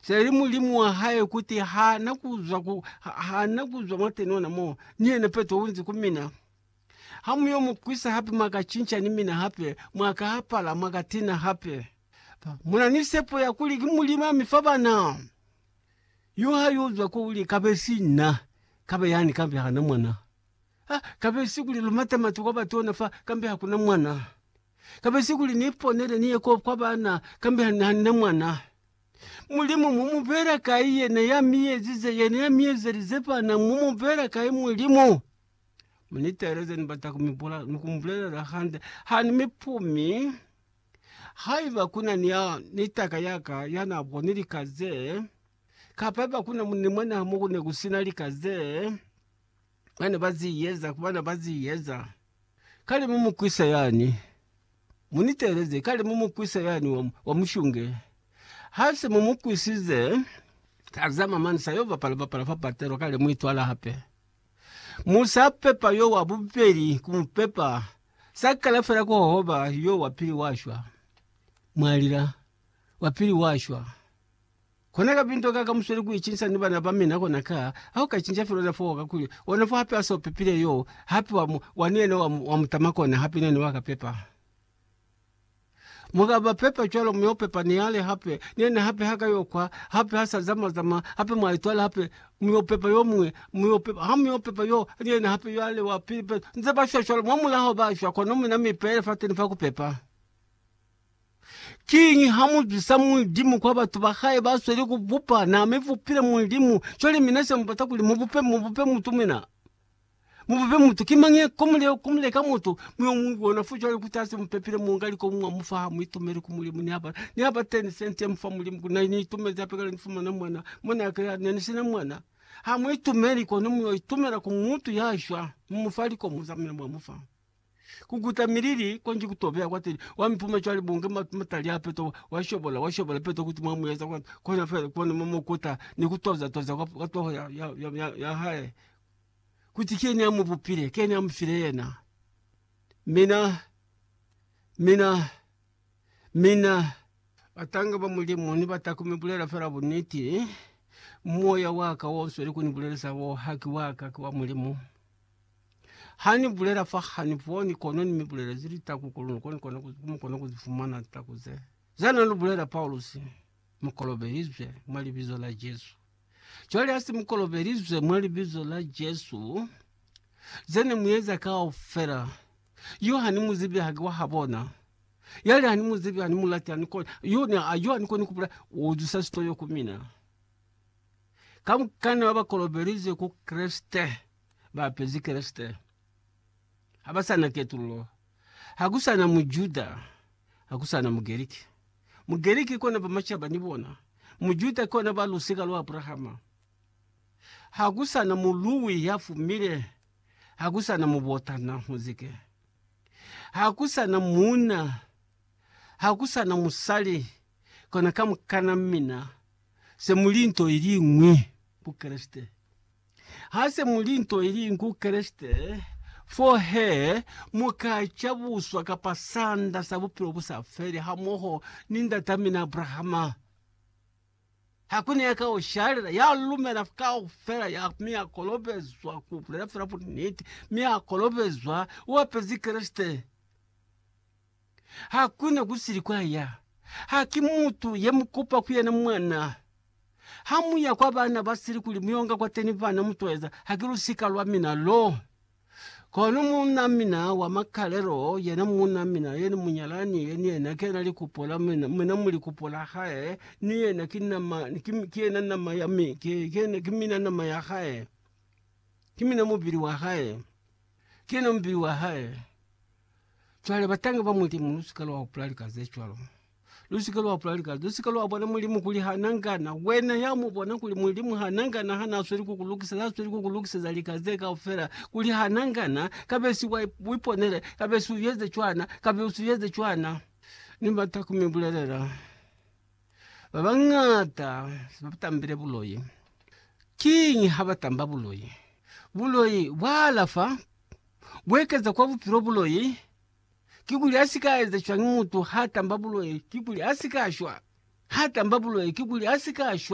Seli Mulimu wa hae kuti ha na kuzwa ku, ha na kuzwa mwateni ona mo, ni yena Petro unzi ku mina, Ha mu yo mu kwisa hape mwa ka cinca ni mina hape, mwa ka apala, mwa ka tina hape. Muna ni sepo ya kuli ki Mulimu ami fa bana. Yo ha yo zwa ko uli, Kabesi na, kabe yani kambe ha na mwana. Ha, kabesi kuli lu mate matu kwa batona fa, kambe ha kuna mwana. Kabesi kuli ni ponele ni ye ko kwa bana, kambe ha, ha ni na mwana. Mulimu mu mu pela kai yena ya mi ezize yena ya mi ezelize fana mu mu pela kai mulimu mu ni teleze ni bata ku mi bula ni ku mu bulelela hande ha ni mi pumi haiba kuna ni ya ni taka yaka ya na bo ni lika ze kapa ba kuna mu ni mona mo ku ne ku sina lika ze Bana ba ziyeza ku bana ba ziyeza, kale mu mukwisa yani, mu ni teeleze, kale mu mukwisa yani wa, wa mushunge. Ha se mu mukwisize, ka za mamani sa yo bapala bapala fa patelo, kale mu itwala hape. Mu sa pepa yo wa bubeli ku mu pepa, sa kala fela ku hohoba yo wa pili wa shwa. Mwa lila, wa pili wa shwa. Kona ka pinto ka ka musweli ku icinca ni bana ba mina kona ka, ha u ka icinca fela ona fo wa ka kuli, ona fo hape a so pepile yo, hape wa mu, wa ni yena wa mu, wa mu tama kona, hape nani wa ka pepa. Mu ka ba pepa cwalo, mu yo pepa ni ale hape, ni yena hape ha ka yo kwa, hape ha sa zama zama, hape mwa itwala hape, mu yo pepa yo muñwi, mu yo pepa, ha mu yo pepa yo, ni yena hape yo ale wa pili, nze ba shwa cwalo, mwa mulaho ba shwa, kono mina mi pele fateni fa ku pepa. Kiñi ha mu zwisa Mulimu kwa batu ba hae ba sweli ku bupa? Na mi bupile Mulimu, cwale mina se mu bata kuli mu bupe, mu bupe mutu mina. Mu bupe mutu. Ki mañi ko mu le, ko mu leka mutu? Mu yo mu bona fo cwale kuti ha se mu pepile muunga liko mwa mu fa, ha mu itumeli ku Mulimu. Ni haba, ni haba 10 sente mu fa Mulimu kuli na ni itumezi hape kale ni fumana mwana, mwana ya kale ne ni sina mwana. Ha mu itumeli, kono mu yo itumela ku mutu ya shwa, mu mu fa liko muza mina mwa mu fa. kukuta milili konji kutobeya kwateli wamipuma cwale bunge matali apeto washobola washobola peto kuti mwamuyeza kwani kona fela kona mumukuta nikutoza toza kwap kwatoho ya- ya- ya- yahae kuti kyeni amuvupile kyeni amufile yena mina mina mina atange va mulimu ni vatakume bulela fela buniti moya waka wonswe likuni bulelesa wo haki waka kiwa mulimu. Ha ni bulela fa ha ni boni, kono ni mi bulela ze li taku kuli ni kone kona ku, mu kone ku fumana litaku ze. Za na lu bulela Paulusi, mu kolobelizwe mwa Libizo la Jesu. Cwale ha se mu kolobelizwe mwa Libizo la Jesu, ze ne mu eza kaufela, yo ha ni mu zibi, haki wa ha bona. Yale ha ni mu zibi, ha ni mu lati, ha ni koni, yo ne, a- yo ha ni koni ku bulela, u zusa sitoyo ku mina. Ka mukana ba ba kolobelizwe ku Kreste, ba apezi Kreste ha ba sa na ketululo. Ha ku sa na Mujuda, ha ku sa na Mugerike. Mugerike kona ba macaba ni bona, Mujuda kona ba lusika lwa Abrahama. Ha ku sa na muluwi ya fumile, ha ku sa na mubotana muzike. Ha ku sa na muuna, ha ku sa na musali, kona kamukana mina se mu li nto iliñwi ku Kreste. Hase muli nto iliñwi ku Kreste, fo he mu ka cabuswa kapa sanda sa bupilo bu sa feli hamoho ni ndatamina Abrahama. Hakuna ya ka u shalela, ya lumela kaufela ya, mi ya kolobezwa ku bulela fela buniti, mi ya kolobezwa u apezi Kreste. Hakuna kusili kwaya. Haki mutu yemukupa kuyena mwana. Hamuya kwa bana basili kuli muyonga kwateni bana mutweza, haki lusika lwamina lo. Kono muunamina wa makalelo, yena muunamina, yena munyalani, yena yena kena likupo la mina, mina muli kupo la hae, ni yena ki nama, ki, ki yena nama ya mi, ki, ki yena, ki mina nama ya hae, ki mina mubili wa hae, ki yena mubili wa hae. Cwale, batangi ba Mulimu, lusike lwa hupula lika ze cwalo. Lusike lwa hupula lika, lusike lwa bona Mulimu kuli ha na ngana. Wena ya mu bona kuli Mulimu ha na ngana ha na sweli ku ku lukiseza, ha sweli ku ku lukiseza lika ze kaufela, kuli ha na ngana, kabesi wa iponele, kabesi u eze cwana, kabesi u eze cwana. Ni bata ku mi bulelela, ba bañata se ba tambile buloi. Kiñi ha ba tamba buloi? Buloi bwa alafa Kuekeza kwa bupilo buloi kikuli asika eza cwañi? Mutu hatamba buloi kikuli asika shwa, hatamba buloi kikuli asika shwa.